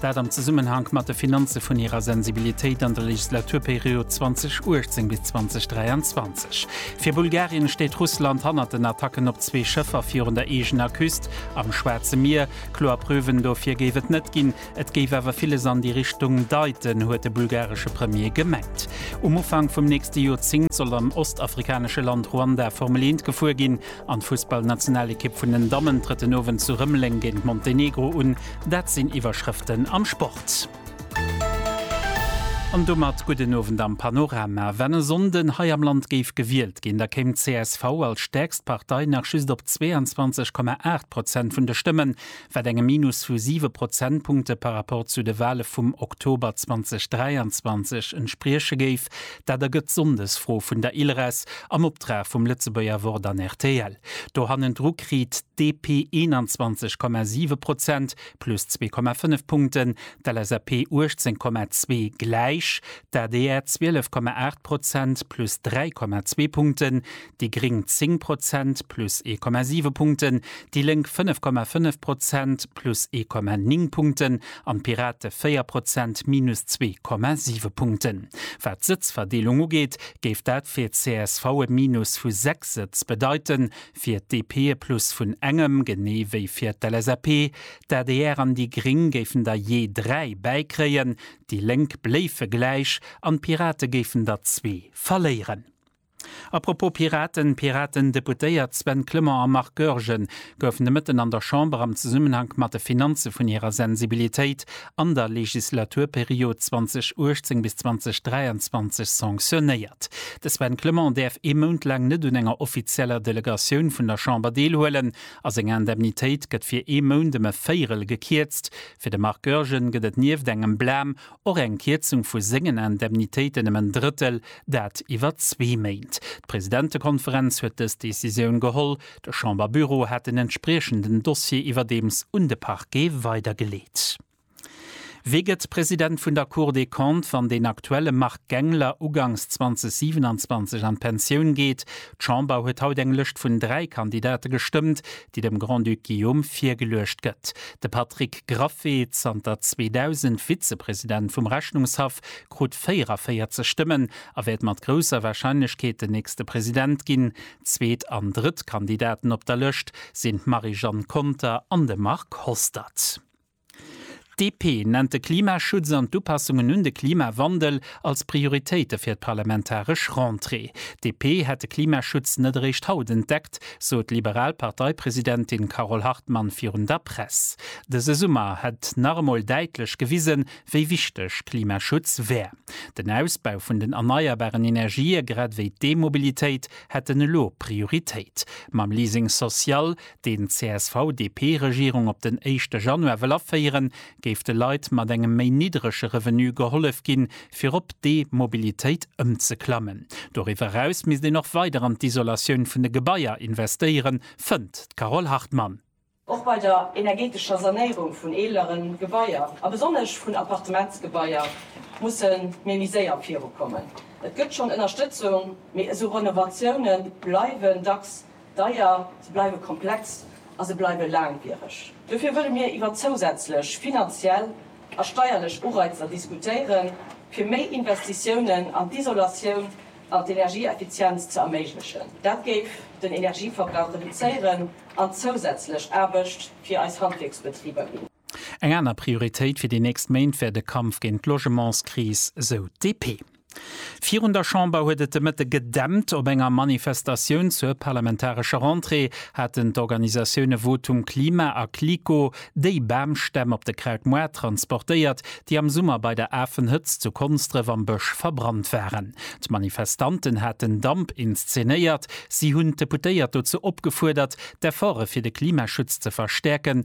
Dat am Zesummenhank mat de Finanze vun hirer Sensibilitéit an der Legislaturperiod 2018 bis 2023. Fir Bulgarien steet Russland hannert den Attacken op zwee Schëffer virun der eegener Küst am Schwaarze Mier. Kloer Preuven dofir géif et net ginn, et géif awer villes an déi Richtung deiten, huet de bulgaresche Premier gemengt. Um Ufank vum nächste Joerzéngt soll am ostafrikanesche Land Ruanda Formel-Eent gefuer ginn. An d'Fussballnationalekipp vun den Dammen trëtt den Owend zu Rëmeleng géint Montenegro un. Dat sinn Iwwerschrëften am Sport. An domat gudden Owend am Panorama. Wann e Sonnden hei am Land géif gewielt ginn, da kéim d'CSV als stäerkst Partei nach just op 22,8 Prozent vun de Stëmmen. wat engem Minus vu siwe Prozentpunkte par rapport zu de Wale vum Oktober 2023 entsprieche géif. Dat ergëtt d'Sonndesfro vun der Ilres am Optrag vum Lëtzebuerger Wort an rtl. Do hannendru kritt DP 21,7 Prozent, plus 2,5 Punkten, d'LSAP 18,2, gläich, d'ADR 12,8 Prozent, plus 3,2 Punkten, déi gréng 10 Prozent, plus 1,7 Punkten, déi Lénk 5,5 Prozent, plus 1,9 Punkten, an d'Pirate 4 Prozent, minus 2,7 Punkten. Wat d'Sëtzverdeelung ugeet, géif dat fir csv e Minus vu 6 Sëtz bedeiten, fir d'DP e Plus vun engem, genee wéi fir d'LSAP. D'adr an déi gréng géifen der jee 3 bäikréien, déi Lénk bléife gläich an d'Pirate géifen der zwee verléieren. A propos Piraten, Piraten-Deputéiert Sven Clement a Marc Goergen goufen de Mëtten an der Chamber am Zesummenhank mat de Finanze vun hirer Sensibilitéit an der Legislaturperiod 2018 bis 2023 sanctionéiert. De Sven Clement däerf ee Mount laang net un enger offizieller Delegatioun vun der Chamber deelhuelen a seng Indemnitéit gëtt fir ee Mount ëm e Véirel gekierzt. Fir de Marc Goergen gëtt et nieft engem Blâme Och eng Kierzung vu sengen Indemnitéiten ëm en Drëttel, dat iwwer zwee Méint. D'Presidentekonferenz huet dës Decisioun geholl. De Chamberbüro hat den entspriechenden Dossier iwwerdeems un de Parquet weidergeleet. Wie gëtt President vun der Cour des Comptes, wann den aktuelle Marc Gangler ugangs 2027 an d'Pensioun geet? D'Chamber huet haut eng Lëscht vun dräi Kandidate gestëmmt. déi dem Grand-Duc Guillaume virgeluecht gëtt. De Patrick Graffé, zanter 2000 Vizepresident vum Rechnungshaff, krut 44 Stëmmen a wäert mat grousser Warscheinlechkeet den nächste President ginn. Zweet an drëtt Kandidaten op der Lëscht sinn d'Marie-Jeanne Conter an de Marc Hostert. D'DP nennt de Klimaschutz an d'Upassungen un de Klimawandel als Prioritéite fir d'parlamentaresch Rentrée. D'DP hätt de Klimaschutz net eréischt haut entdeckt, sot d'liberal Parteipresidentin Carole Hartmann virun der Press. Dëse Summer hätt nach emol däitlech gewisen, wéi wichteg Klimaschutz wär. Den Ausbau vun den erneierbaren Energië grad ewéi d'E-Mobilitéit hätten elo Prioritéit. Mam Leasing social deen d'CSV-DP-Regierung op den éischte Januar wëll aféieren, géif de Leit mat engem méi niddrege Revenu gehollef ginn, fir op d'E-Mobilitéit ëmzeklammen. Doriwwer eraus misst een och weider an d'Isolatioun vun de Gebaier investéieren, fënnt d'Carole Hartmann. Och bei der energeetescher Sanéierung vun eelere Gebaier, a besonnesch vun Appartementsgebaier, musse mir méi séier virukommen. Et gëtt schonn Ënnerstëtzung, mee esou Renovatioune bleiwen dacks Deier, se bleiwe komplex a se bleiwe laangwiereg. Dofir wëlle mir iwwer zousätzlech finanziell a steierlech Ureizer diskutéiere fir méi Investitiounen an d'Isolatioun an d'Energieeffizienz ze erméiglechen. Dat géif den Energieverbrauch reduzéieren an zousätzlech Aarbecht fir eis Handwierksbetriber ginn. Eng aner Prioritéit fir déi nächst Méint wär de Kampf géint d'Logementskris, sou d'DP. Virun der Chamber huet et de Mëtte gedämpt. Op enger Manifestatioun zur parlamentarescher Rentrée haten d'Organisatioune Votum Klima a Clicquot déi Bamstämm op de Krautmoart transportéiert, déi am Summer bei der Afenhëtzt zu Konsdref am Bësch verbrannt waren. D'Manifestanten haten Damp inszenéiert. Si hunn d'Deputéiert dozou opgefuerdert, d'Efforte fir de Klimaschutz ze verstäerken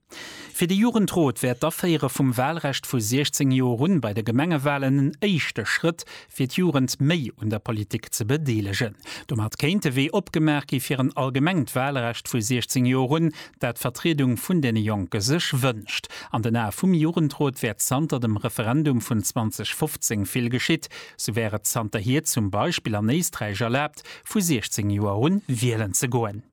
Fir de Jugendrot wär d'Aféiere vum Walrecht vu 16 Joer un bei de Gemengewalen en éischte Schrëtt, fir d'Jugend méi un der Politik ze bedeelegen. Domat kéint de Wee opgemaach gi fir en allgemengt Walrecht vu 16 Joer un, dat d'Vertriedung vun deene Jonke sech wënscht. An den Ae vum Jugendrot wär zanter dem Referendum vun 2015 vill geschitt. Sou wär et zanterhier zum Beispill an Éisträich erlaabt, vu 16 Joer un wielen ze goen.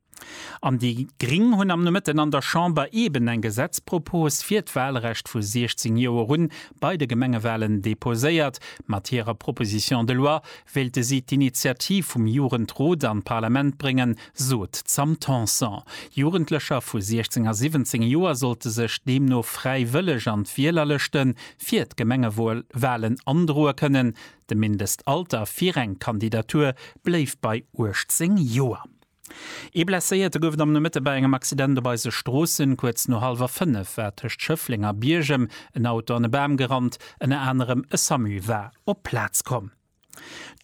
An déi gring hunn am Nomëtten an der Chamber eeben eng Gesetzpropos fir d'Wahlrecht vu 16 Joer un bei de Gemengewahlen deposéiert. Mat hirer Proposition de loi wéilte si d'Initiativ vum Jugendrot an d'Parlament bréngen, sot d'Sam Tanson. Jugendlecher vu 16 a 17 Joer sollte sech deemno fräiwëlleg an d'Wielerlëschte fir d'Gemengewahlen androe kënnen. De Mindestalter fir eng Kandidatur bléift bei 18 Joer. Ee Blesséierte gouf et am Nomëtte bei engem Accident op eise Stroossen. Kuerz no hallwer 5 war tëscht Schëffleng a Biergem en Auto an e Bam gerannt. Ënner anerem e Samu war op d'Plaz komm.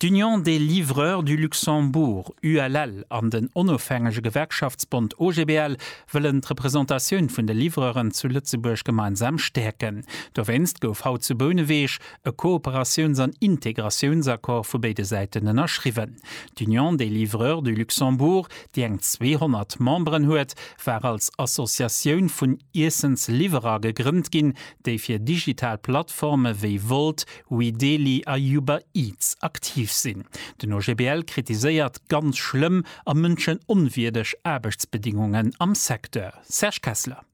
D'Union des Livreurs du Luxembourg, ULL, an den onofhängege Gewerkschaftsbond OGBL wëllen d'Representatioun vun de Livreuren zu Lëtzebuerg gemeinsam stäerken. Dowéinst gouf haut zu Bouneweg e Kooperatiouns an Integratiounsaccord vu béide Säiten ënnerschriwwen. D'Union des livreurs du Luxembourg, déi eng 200 Memberen huet, war als Associatioun vun Iessensliwwerer gegrënnt ginn, déi fir digital Plattforme wéi Wolt, Weedeli a Uber Eats aktiv sinn. Den OGBL kritiséiert ganz schlëmm a mënschenonwierdeg Aarbechtsbedingungen am Secteur. Serge Kessler.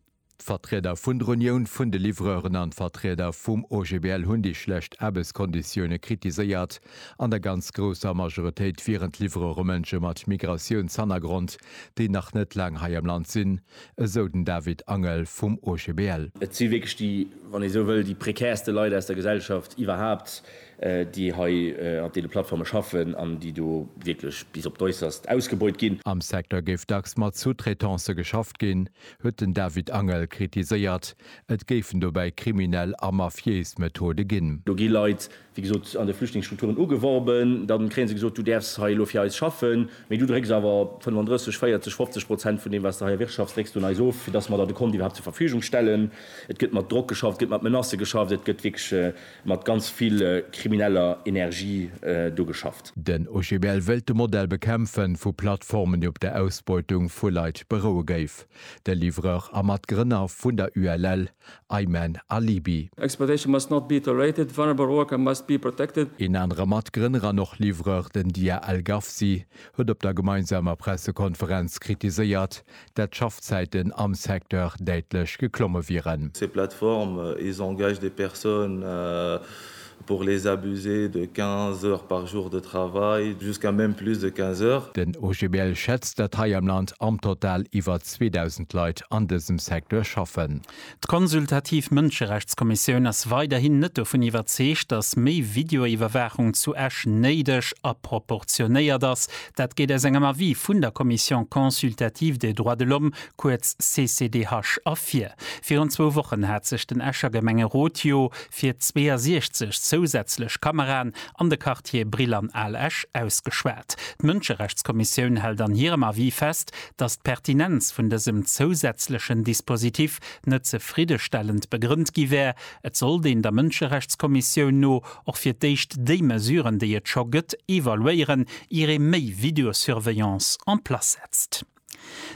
D'Vertrieder vun der Unioun vun de Livreuren an d'Vertrieder vum OGBL hunn déi schlecht Aarbechtskonditioune kritiséiert. An der ganz grousser Majoritéit wieren d'Livreure Mënsche mat Migratiounshannergrond, déi nach net laang hei am Land sinn, esou den David Angel vum OGBL. Et si wierklech déi, wann ee sou wëll, déi prekärste Leit aus der Gesellschaft iwwerhaapt, déi hei an deene Plattforme schaffen an déi do wierklech bis op d'Äusserst ausgebeut ginn. Am Secteur géif dacks mat Sous-traitancë geschafft ginn, huet den David Angel kritiséiert. Et géifen dobäi kriminell a mafiéis Methode ginn. Do gi Leit, wéi gesot, an de Flüchtlingsstrukturen ugeworben. Da kréie se gesot, du däerfs hei elo fir eis schaffen, mee du drécks awer 35, 40, 50 Prozent vun deem, wat s de hei erwirtschafts, drécks du un eis of, fir dass mer der de Kont iwwerhaapt zur Verfügung stellen. Et gëtt mat Drock geschafft, et gëtt mat Menacë geschafft, et gëtt wierklech. Mat ganz vill krimineller Energie do geschafft. Den OGBL wëllt de Modell bekämpfen, vu Plattformen, déi op der Ausbeutung vu Leit beroue géif. De Livreur a Matgrënner vun der ULL, Ayman Alibi. Exploitation must not be tolerated, vulnerable worker must be protected. Een anere Matgrënner an och Livreur, den Dia Al Gafsi, huet op der gemeinsamer Pressekonferenz kritiséiert, dat d'Schaffzäiten am Secteur däitlech geklomme wieren. Ces plateformes, ils engagent des personnes pour les abuser de 15 heures par jour de travail, jusqu'à même plus de 15 heures. Den OGBL schätzt, datt hei am Land am Total iwwer 2.000 Leit an dësem Secteur schaffen. D'Konsultativ Mënscherechtskommissioun ass weiderhin net dovun iwwerzeegt, datt méi Videoiwwerwaachung zu Esch néideg a proportionéiert ass. Dat geet aus engem Avis vun der Commission consultative des droits de l'homme, kuerz CCDH, ervir. Virun zwou Wochen hat sech den Escher Gemengerot jo fir 62 zousätzlech Kameraen an de Quartiere Brill an Al Esch ausgeschwat. D'Mënscherechtskommissioun hält an hirem Avis fest, datt d'Pertinenz vun dësem zousätzlechen Dispositif net zefriddestellend begrënnt gi wär. Et sollt een der Mënscherechtskommissioun no och fir d'éischt déi Mesuren, déi et scho gëtt, evaluéieren, ier ee méi Videosurveillance en place setzt.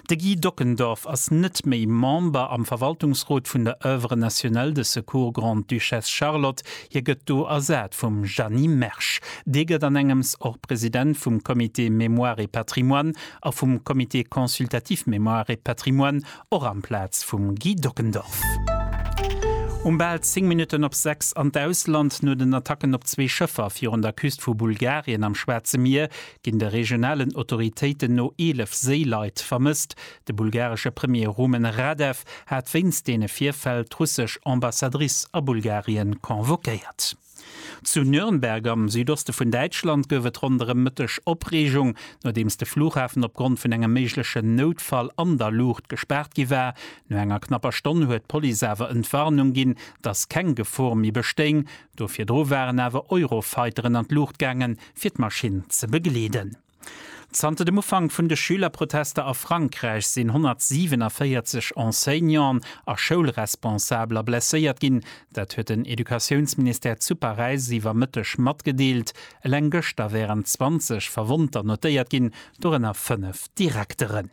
De Guy Dockendorf ass net méi Member am Verwaltungsrot vun der Oeuvre nationale de secours Grande-Duchesse Charlotte. Hie gëtt do ersat vum Jeanny Mersch. Dee gëtt an engems och President vum Comité Mémoire et Patrimoine a vum Comité consultatif Mémoire et Patrimoine, och amplaz vum Guy Dockendorf. Um bal 10 Minutten op 6 an d'Ausland. No den Attacken op zwee Schëffer virun der Küst vu Bulgarien am Schwaarze Mier ginn de regionalen Autoritéiten no 11 Séileit vermësst. De bulgaresche Premier Rumen Radev hat wéinst deene Virfäll d'russesch Ambassadrice a Bulgarien convoquéiert. Zu Nürnberg am Südoste vun Däitschland gouf et ronderëm Mëtteg Opreegung, nodeems de Flughafen opgrond vun engem méiglechen Noutfall an der Luucht gespaart gi war. No enger knapper Stonn huet d'Police awer Entwarnung ginn, dass keng Gefor méi bestéing. Do virdru waren awer Eurofighteren an d'Luucht gaangen, fir d'Maschinn ze begleeden. Zanter dem Ufank vun de Schülerprotester a Frankräich sinn 147 Enseignanten a Schoulresponsabler blesséiert ginn. Dat huet den Educatiounsministère zu Paräis iwwer Mëtteg matgedeelt. Eleng gëschter wären 20 Verwonnter notéiert ginn, dorënner fënnef Direkteren.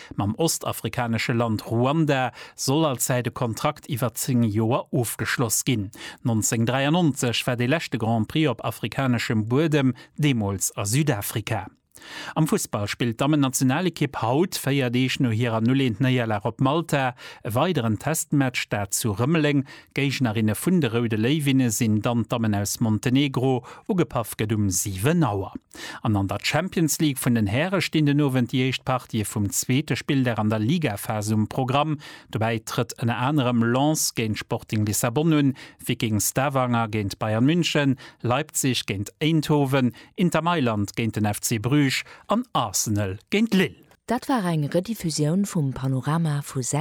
Mam ostafrikanesche Land Ruanda soll als Säit e Kontrakt iwwer 10 Joer ofgeschloss ginn. 1993 war dee leschte Grand Prix op afrikaneschem Buedem, deemools a Südafrika. Am Fussball spillt d'Dammennationalekipp haut, 4 Deeg no hirer 0-1 Néierlag op Malta, e weideren Testmatch, dat zu Rëmeleng, D'Géignerinne vun de Roude Léiwinne sinn dann d'Dammen aus Montenegro. Ugepaff gëtt um 7 Auer. An an der Champions League vun den Häre stinn den Owend déi éischt Partië vum zweete Spilldag an der Ligaphas um Programm. Dobäi trëtt ënner anerem Lens géint Sporting Lissabon un, Viking Stavanger géint Bayern München, Leipzig géint Eindhoven, Inter Mailand géint den FC Bruges an Arsenal géint Lille. Dat war eng Rediffusioun vum Panorama vu 6.